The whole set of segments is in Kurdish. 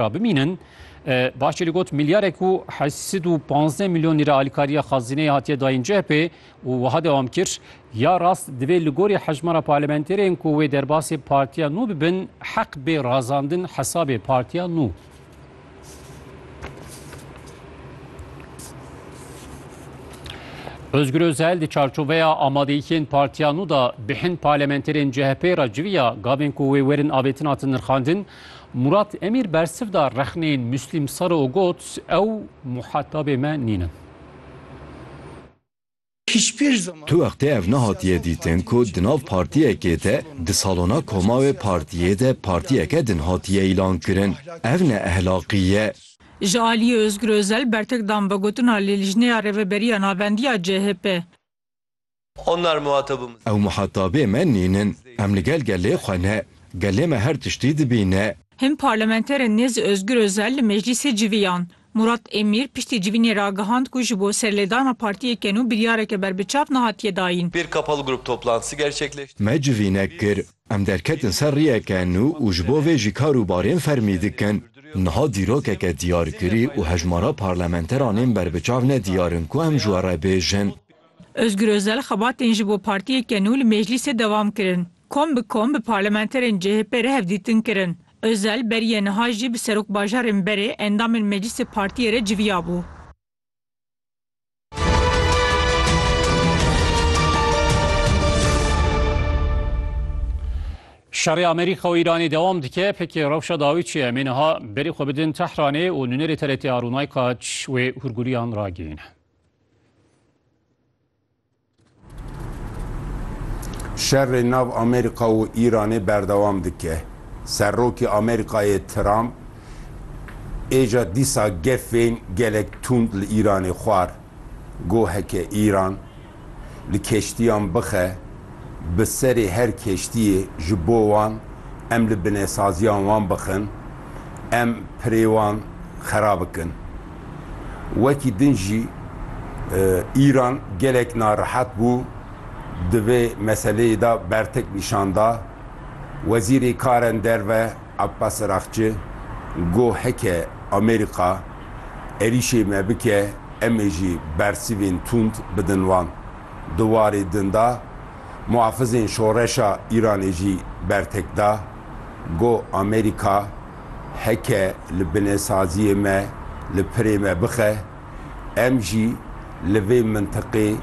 Ra bimînin, baş çê li got milyarek û heşt sed û panzdeh milyon lîre alîkariya xazineyê hatiye dayîn CHP'ê û wiha dewam kir, Ya rast divê li gorî hejmara parlementerên ku wê derbasê partiya nû bibin heq bê razandin hesabê partiya nû. Özgür Özel di çarçoveya amadeyîkên partiya nû de bi hin parlementerên CHP'ê re civiya gavên ku wê werin avêtin hatin nirxandin, Murat Emîr bersiv da rexneyên Muslîm Saro û got, Ew muhetabê me nîn in. Tu wextê ev nehatiye dîtin ku di nav partiyekê de di salona komawê partiyê de partiyeke din hatiye îlankirin. Ev ne ehlaqî ye. Ji aliyê Ozgur Ozel bertek dan vegotina li Lijneya Rêveberiya Navendiya CHP. Onlar muhatabımız. Ew muhatabê me nîn in. Em li gel gelê xwe ne. Gelê me her tiştî dibîne. Hin parlamenterên nêz Ozgur Ozel li meclîsê civiyan. Murat Emîr piştî civînê ragihand ku ji bo serlêdana partiyê kenû biryareke berbiçav nehatiye dayîn. Bir kapalı grup toplantısı gerçekleştirdik. Me civînek kir. Em derketin ser riyeke nû û ji bo vê jî kar û barên fermî dikin. Niha dîrokeke diyarkirî û hejmara parlamenteranên berbiçav ne diyar in ku em ji we re bêjin. Ozgur Ozel xebatên ji bo partiyeke nû li Meclîsê dewam kirin. Kom bi kom bi parlamenterên CHP'ê re hevdîtin kirin. Ozel beriye niha jî bi serokbajarên berê endamên Meclîsê partiyê re civiyabû. Şerê Amerîka û Îranê dewam dike, pkk rewşa dawî çi ye? Em ê niha berê xwe bidin Tehranê û nûnerê TRT Arûnaykaç wê hûrgûliyan ragihîne. Şerê nav Amerîka û Îranê berdewam dike. Serokê Amerîkayê Trump êca dîsa gefên gelek tund li Îranê xwar. Got heke Îran li keştiyan bixe bi serê her keştiyê ji bo wan em li binesaziyan wan bixin, em pirê wan xera bikin. Wekî din jî Îran gelek narehet bû, di vê meseleyê de bertek nîşan da. Wezîrê Karen Derve Abbas Araghçi got heke Amerîka êrîşê me bike em ê jî bersîvên tund bidin wan. Di warê din de muhafizên şoreşa Îranê jî bertek da, got Amerîka, Heke li binesaziyê me li pirê me bixe, em jî li vê mintiqê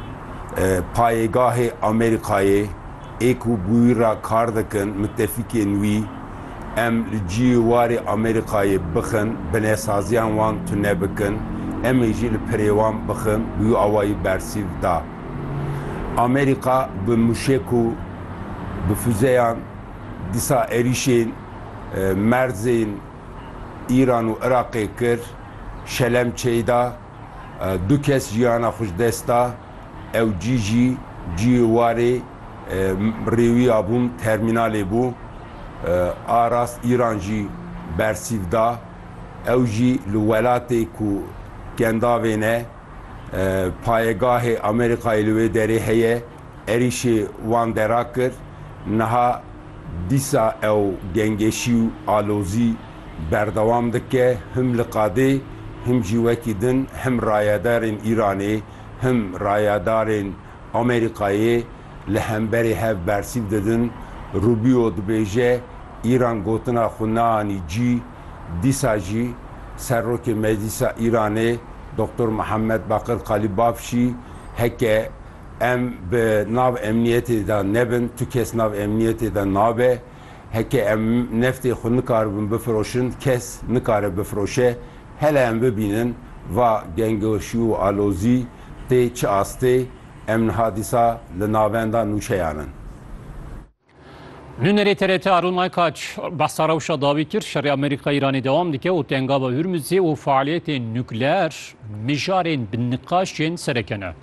payêgahê Amerîkayê ê ku bi wî re kar dikin mitefîkên wî em li ciyê warê Amerîkayê bixin binesaziyan wan tune bikin em ê jî li pirê wan bixin bi wî awayî bersîv da. Amerîka bi mûşek û bi fuzeyan dîsa êrîşên. merzên Îran û Iraqê kir, şelem çêy da, du kes jiyana xwe ji dest da, ew cî jî ciyê warê rêwiya bûn termînalê bû. A rast Îran jî bersîv da, ew jî li welatê ku kendavê ne, payegahê Amerîkayê li wê derê heye, Êrîşê wan dera kir, niha dîsa ew gengeşî û alozî berdewam dike, him li qadê, him jî wekî din him rayedarên Îranê, him rayedarên Amerîkayê li hemberê hev bersîv didin. Rubio dibêje, Îran gotina xwe neanî cî. Dîsa jî Serokê Meclîsa Îranê Doktor Mihemed Bakir Kalîbaf jî heke Em bi nav emniyetê de nebin, tu kes nav emniyetê de nabe. Heke em neftê xwe nikaribin bifiroşin, kes nikare bifiroşe. Hele em bibînin va gengeşî û alozî tê çi astê, em niha dîsa li navenda nûçeyan in. Nûnerê TRT Arun Aykaç behsa rewşa dawî kir şerê Amerîka Îranê dewam dike û tengava Hurmuzê û faaliyetên nukleer mijarên bi niqaşên sereke ne.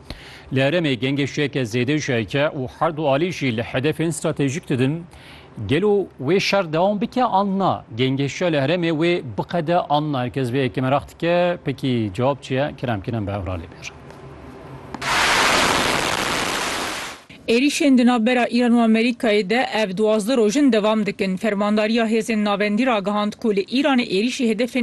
Li herêmê gengê şêke zêde jiyayke û her du alî jî li hedefên stratejîk didin. Gelo wê şer dewam bike an na? Gengê şiya li herêmê wê biqede an na? Her kes vê yekê meraq dike. Pekî cewab çi ye? Kerem Kerem bi hev re lê bêjin. Êrîşên di navbera Îran û Amerîkayê de ev duwazdeh roj in dewam dikin. Fermandariya Hêzên Navendî ragihand ku li Îranê êrîşî hedefên